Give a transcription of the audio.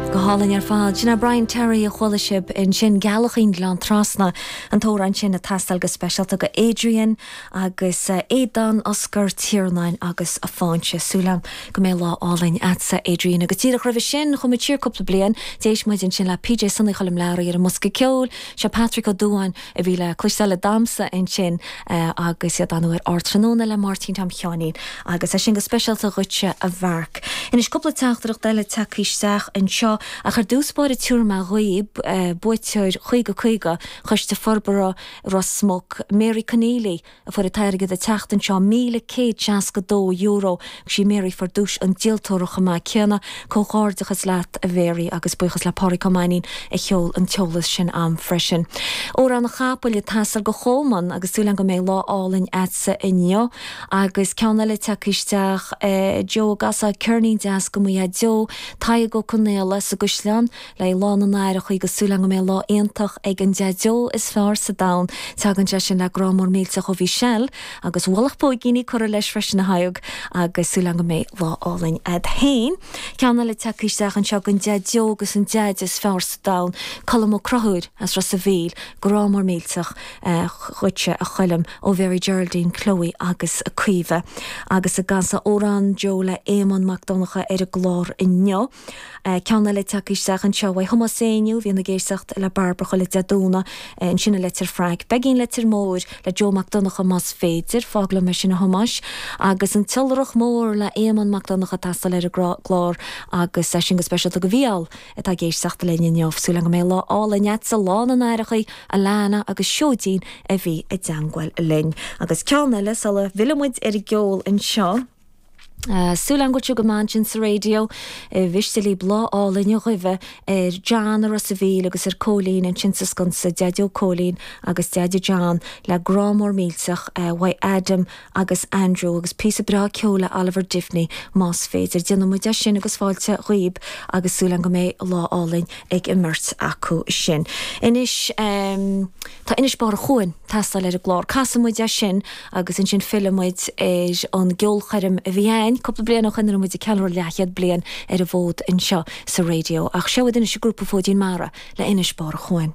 Go hálainn ar fad. Sin é Brian Terry a chuala sibh ansin, Gealachín Gleann Trasna, an t-amhrán sin ag teastáil go speisialta go Adrian agus Aodán, Oscar, Tiarnán agus Fainche. Súil agam go mbeidh lá álainn agatsa Adrian. Agus díreach roimhe sin, chuaigh muid siar cúpla bliain, d'éist muid ansin le PJ Sonaí Choilm Learaí ar an mbosca ceoil, seo Patrick Ó Dubháin, a bhí le cloisteáil ag damhsa ansin agus iad á dhéanamh ar Ardtráthnóna le Máirtín Tom Sheáinín agus é sin go speisialta dhuitse a Mhark. Anois cúpla teachtaireacht eile tagtha isteach anseo ach ar dtús báire tabharfaidh mé dhaoibh, buaiteoir Caoga Caoga, Coiste Forbartha Ros Muc, Mary Conneely, a fuair an t-airgead an tseachtain seo, €1,162, agus sí Mary a fuair duais an díoltóra chomh maith céanna. Comhghairdeachas leat a Mhary agus buíochas le Pádraig Ó Mainín a sheol an t-eolas sin a'm freisin. Amhrán an Chapaill ag teastáil go Cholman agus súil agam go mbeidh lá álainn a'dsa inniu agus ceann eile tagtha isteach. Joe, an gcasfá ceirnín deas go mo Dheaideo, Tadhg Ó Conaola sa gCaisleán. Le haghaidh Lá na nAithreachaí agus súil agam go mbeidh lá iontach ag an Daideo is fearr sa domhan. Tagann sé sin le grá mór millteach ó Mhichelle agus ualach póigíní curtha leis freisin a Thaidhg agus súil agam go mbeidh lá álainn agat féin. Ceann eile tagtha isteach anseo don Daideo agus an Deaide is fearr sa domhan, Colm Ó Crothúil as Ros a Mhíl. Grá mór millteach dhuitse a Choilm ó Mhary Geraldine, Chloe agus Caoimhe. Agus an gcasfá amhrán dó le Éamonn Mac Donncha ar an gclár inniu. Ceann eile tagtha isteach anseo uaidh Thomás Éinniú, bíonn ag éisteacht le Bairbre chuile Dé Domhnaigh, ansin i Leitir Fraic, Peigín Leitir Móir le Joe Mac Donncha más féidir, fág liom é sin a Thomáis, agus An tIolrach Mór le Éamonn Mac Donncha ag teastáil ar an gclár agus é sin go speisialta go Mhícheál atá ag éisteacht linn inniu. Súil agam go mbeidh lá álainn agatsa, Lá na nAithreachaí, Alanna agus Seoidín a bhí i dteangmháil linn. Agus ceann eile sula bhfillfidh muid ar an gceol anseo. Súil agam go bhfuil tú go maith ansin sa raidió ar mhiste libh lá álainn a ghuí ar John i Ros a Mhíl agus ar Cóilín ansin sa Sconsa, Deaideo Cóilín agus Deaide John le grá mór millteach uaidh Adam agus Andrew agus píosa breá ceoil le Oliver Diviney más féidir. Déanfaidh muid é sin agus fáilte dhaoib agus súil agam go mbeidh lá álainn ag an mbeirt acu sin. Anois. Tá Inis Barr an Chuain ag teastáil ar an gclár. Casfaidh muid é sin agus ansin fillfidh muid ar an gceolchoirm a bhí againn cúpla bliain ó shin a raibh muid ag ceiliúradh leathchéad bliain ar an bhfód anseo sa raidió. Ach seo iad anois, an grúpa Fóidín Mara le Inis Barr an Chuain.